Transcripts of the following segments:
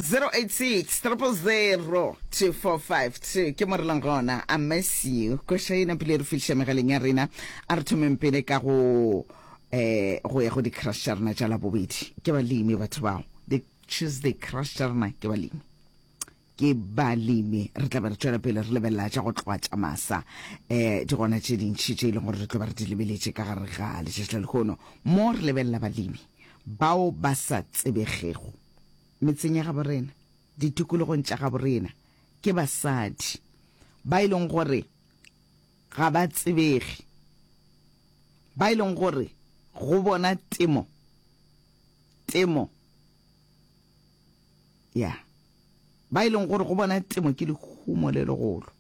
086-000-245-2 ke mo re leng gona a masiu koša ena pele re fihliša megaleng ya rena a re thomeng pele ka go eh go ya go di-crush tša rena tša labobedi ke balemi batho bao the tuesday crush tša rena ke balemi ke balemi re tla be re tšwela pele re lebelela tša go tloa tša masa um di gona tše dintšhi tše e leng gore re tlo ba re di lebeletše ka gare ga letšatši la lekgono mo re lebelela balemi bao ba sa tsebegego metseng ya gabo rena ditikologong tša gabo rena ke basadi ba e leng gore ga ba tsebege ba e leng gore go bona temo temo ya yeah. ba e leng gore go bona temo ke lehumo le legolo.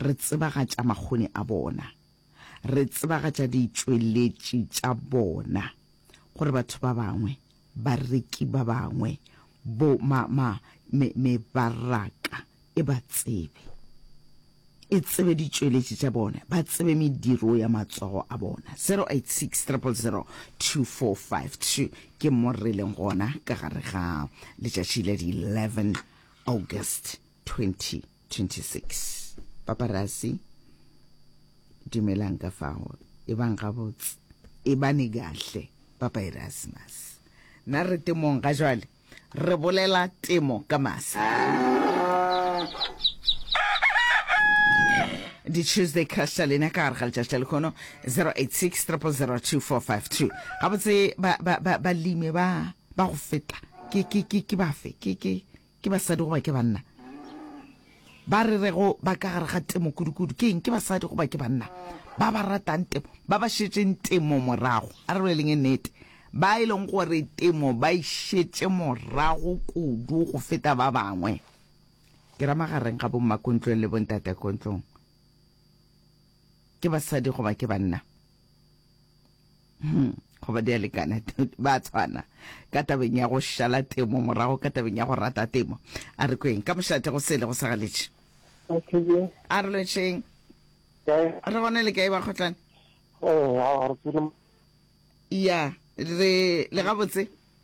Re tsebagatša makgoni a bona, re tsebagatša ditšweletši tša bona gore batho ba bangwe, bareki ba bangwe, bo, ma, ma, me, mebaraka e ba tsebe. e tsebe ditšweletši tša bona, ba tsebe mediro ya matsogo a bona. 0860002452 ke mo re leng gona ka gare ga letšatši la di 11 August 2026. Paparasi dumelang ka fago e bang gabotse e bane kahle Papa Erasmus na re temong ga jwale Re bolela temo ka masa. di-tuesday crush tša lena ka gare ga letšatši la lekgono 086 3002452 gabotse balemi ba ba go feta ke bafe ke basadi goba ke banna Ba re rego ba ka gare ga temo kudu-kudu ke eng? Ke basadi goba ke banna ba ba ratang temo, ba ba šetšeng temo morago? A re boleleng e nnete, ba e leng gore temo ba e šetše morago kudu go feta ba bangwe. Ke ra magareng ga bommakontlong le bontatakontlong, ke basadi goba ke banna? hmm, goba di a lekana ba tshwana ka tabeng ya go šala temo morago ka tabeng ya go rata temo a re kweng ka mošate go sele go sagaletše a re lotšheng re gone le kae ba kgotlane ya re le gabotse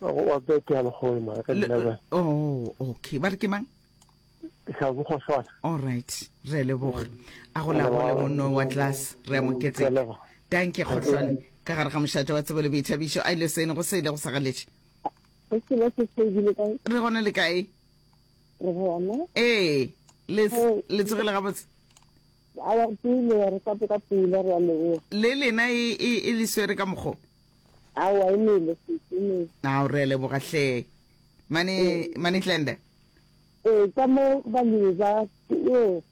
Go wa bete ya lekgolo mara ka Le- di-level. oh okay ba re ke mang Tlhabogo Shwana. all right re a leboga a go lagole monno wa tlase re a mo Ke a ketseka leboga. tanke kgotlhwane ka gare ga mošate wa tsebo le boithabišo a ile sene go sele go sagaletše Go selo se se ebile ka re gone le kae re gona. ee le Oh. le tsogile gabotse A wa pele re ka ka pula re a leboga. le lena e e- e le swere ka mokgo Aowa e nele sesi e nele. Ao re a leboga hle mane mane Tlende. Ee ka mo balemi ba yo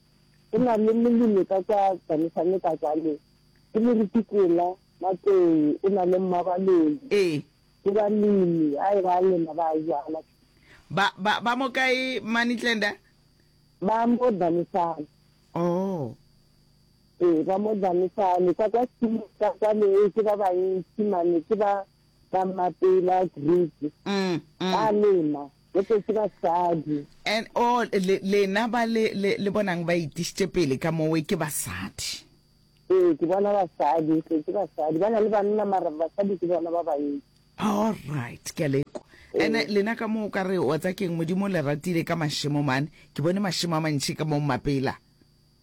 go na le molemi ka kwa Danisane ka kwale ke Moruti Kola Matlou o na le Mmabaloi Ee. ke balemi a e ba a lema ba a jala Ba ba ba mo kae mane Tlende? ba mo Danisane. Oh. Ee, ba mo danisa le ka kwa Silo ka kwale, ke ba bantši mane, ke ba ba mapela Greek. Mm, mm. Ba lema, gote ke basadi. And oh, le, lena ba le, le, le bonang ba itišitše pele ka mowe ke basadi. Ee, ke bona basadi, ke ke basadi. Ba na le banna mara basadi ke bona ba bantši. All right, ke a le kwa. And Ee. lena ka moo o ka re wa tsa keng Modimo o le ratile ka mašemo mane. Ke bone mašemo a mantši ka moo mapela.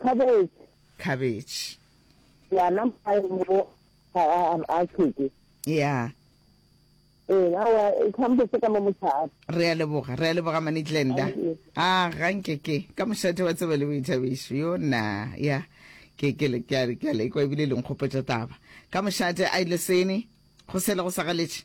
Khabetšhe. Khabetšhe. Ya na mayo mo a a a kheke. Ya. E na wa e khambo se ka mo mothata. Re a leboga, re a leboga mane Glenda. A ga nke ke ka moshate wa tseba le boithabišo. Yo na ya ke ke le ke a ke a le kwa ebile le nkgopetša taba. Ka moshate a ile sene go sele go sa galetše.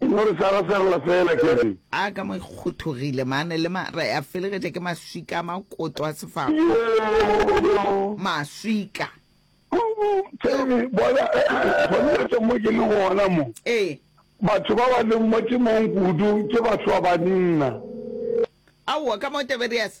E no re swara swarela fela ke re. A ka mo e kgothogile mane le ma ra ya felegetša ke maswika a makoto a sefako. Yoo! Maswika! Themi, bona, gona tsa mo ke le gona mo. Ee. Batho ba ba leng mo temong kudu ke batho ba banna. Aowa, ka mo Tiberiase.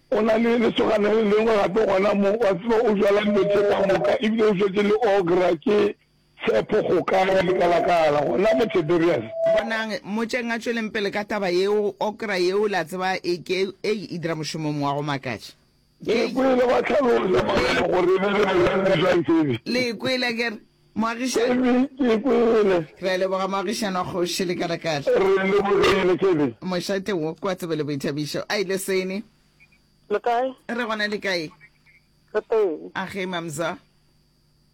Go na le lesogana le lengwe gape gona mo, wa tseba, o jala dilo tše ka moka, ebile o šetše le okra, ke Tshepo Kgokana, lekalakala, gona mo Tiberias. Bonang, mmotšeng a tšweleng pele ka taba yeo, okra yeo, la tseba, e ke, ei, e dira mošomong wa go makatša. Le e kwele, gwa hlalosa mangwalo gore e be le bolwelwe bja ntšene. Le e kwele, a ke re? Moagišani. Kelly, Ke e kwele. Re a leboga moagišani wa kgoši lekalakala. Re e lebogile, Kelly. Mošate wo kwa tsebe le boithabišo. A ile seni. Le kae? Re gona le kae? Re teng. A ge mamza.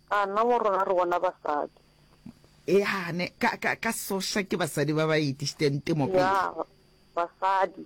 A nna mo rona re bona basadi. Eya ne ka ka ka soša ke basadi ba ba itišiteng temo pele. Ya basadi.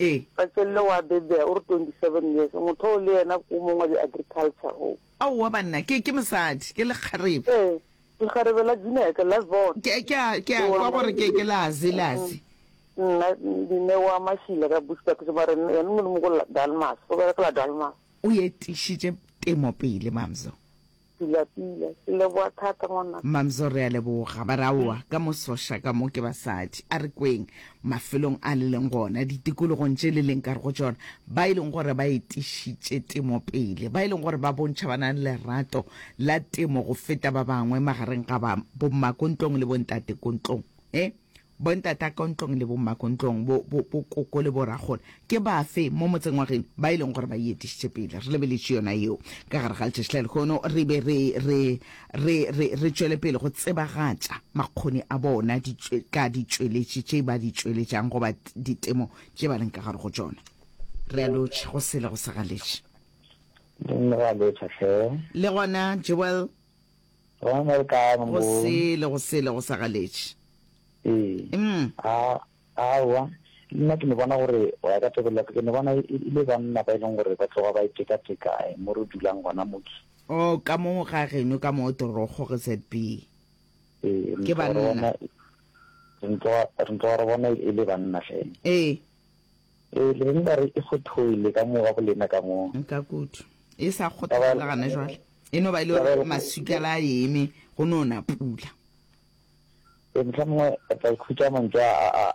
Ee. Patsello wa Bebea o re 27 years motho oo le yena ke o mongwe wa di-agriculture oo. Aowa banna, ke, ke mosadi, ke lekgarebe. Ee, lekgarebe la Juneke, la Zone. Ke, ke a, ke a kwa gore ke, ke la Zi, la Zi. Nna, Dineo wa Mashila ka Bushbuckridge, mara yena, yena Molimo ko la Dalmas, o berekela Dalmas. O etišitše temo pele, Mamzo. Pila pila, ke leboga thata ngwanaka. Mmamzo re a leboga. Ba re aowa ka mo soša ka mo ke basadi. A re kweng mafelong a le leng gona, ditikologong tše le leng ka re go tšona, ba e leng gore ba etišitše temo pele, ba e leng gore ba bontšha ba na le lerato la temo go feta ba bangwe magareng ga ba, bommakontlong le bontatekontlong. He, Bontat'a Kontlong le Bomma Kontlong, bo, bo, bo koko le bo rakgole, ke bafe mo motseng wa geno ba e leng gore ba e etišitše pele? Re lebeletše yona yeo ka gare ga letšatši la lehono, re be re, re, re, re, re tšwele pele go tsebagatša makgoni a bona, di, ka ditšweletši tše ba di tšweletšang, goba ditemo tše ba leng ka gare go tšona. Re a lotšha, go sele go sa galetše. Re a lotšha, hle. Le gona, Joel. Go na le ka mo. Go sele, go sele go sa galetše. Ee. Mm. A, awa. Nna ke ne bona gore go ya ka tebelelo ke ne bona e le banna ba e leng gore ba tloga ba e teka teka eh, mo re dulang gona moki. Oh, ka mo ga geno ka mo torogo ge ZB. Ee, Ke banna. Re ntloga re bona e le banna fela. Ee. Ee, le be le ka re e fothoile ka mo ga go lena ka mo. Ka kudu. E sa kgothola le gane jwale. E no ba e le gore maswikela a eme, go no na pula. Ee, mohlomongwe re tla ikhutša mantšu a a